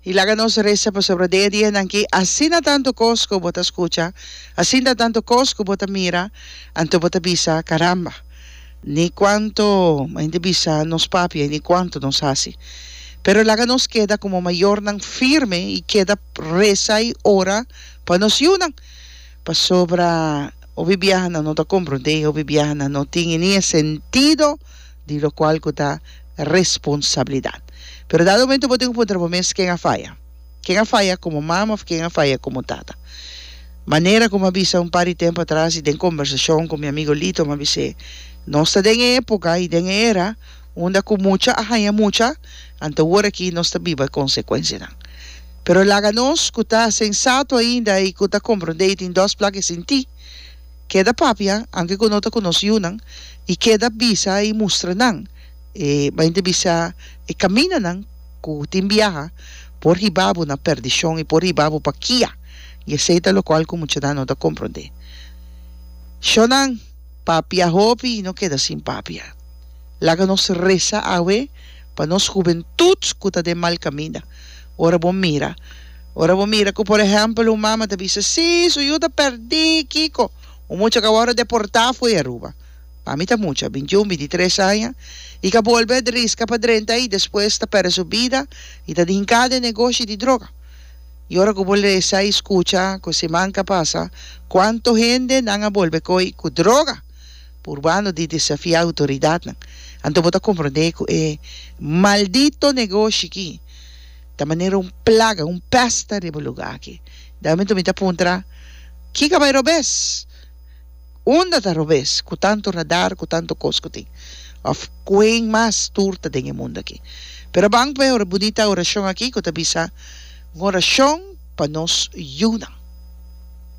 Y laga nos resa pasobra den e dianan aki, asina tantu cos cu bo ta scucha, asinta tantu cos cu bo ta mira, anto bo ta bisa, Caramba, ni cuanto mente bisa nos papia y ni cuanto nos haci. Pero laga nos keda como mayornan firme y keda resa y ora pa nos yiunan, pasobra hopi biahanan no ta comprende, hopi biahanan no tin ni e sentido di locual cu ta responsabilidad. Pero dado momento bo tin cu puntra bo mes, ken a faya? Ken a faya como mama of ken a faya como tata? Manera cu mi a bisa un par di tempo atras y den conversacion cu mi amigo Lito mi a bis'é, nos ta den e epoca y den e era unda cu mucha a haña mucha, anto ora aki nos ta biba e consecuencianan. Pero laga nos cu ta sensato ainda y cu ta comprende y tin dos plak e sinti. Keda papia anke ku no ta konos yunan i keda bisa i mustra nan e bai inti bisa e kaminanan ku tin biaha por hiba bo na perdishon i por hiba bo pa kia i esei ta lokual ku muchanan no ta komprondé. Shónan, papia hopi i no keda sin papia. Laga nos resa awe pa nos hubentut ku ta den mal kaminda. Ora bo mira, ora bo mira cu por ehempel un mama ta bisa, Sí, su yu ta perdí, Kiko, un mucha ca wòrdu deportá fo'i Aruba. Pa mi ta mucha, bintiun, bintitres aña, i ka bolbe a driska pa drenta i despues ta perde su bida i ta dinká den negoshi di droga. I ora cu bo lesa i scucha cu siman ka pasa cuanto hende nan a bolbe koi cu droga purbando di desafiá autoridadnan, anto bo ta comprendé cu e maldito negoshi ki, Ta manera un plaga, un pèsta riba lugá aki. Den momentu mi ta puntra, Ki ka bai robes? Unda ta robes ku tantu radar, ku tantu kos ku tin? Òf kuen mas tur ta den e mundu aki? Pero ban p'e ora bunita orashon aki ku ta bisa, Un orashon pa nos yunan.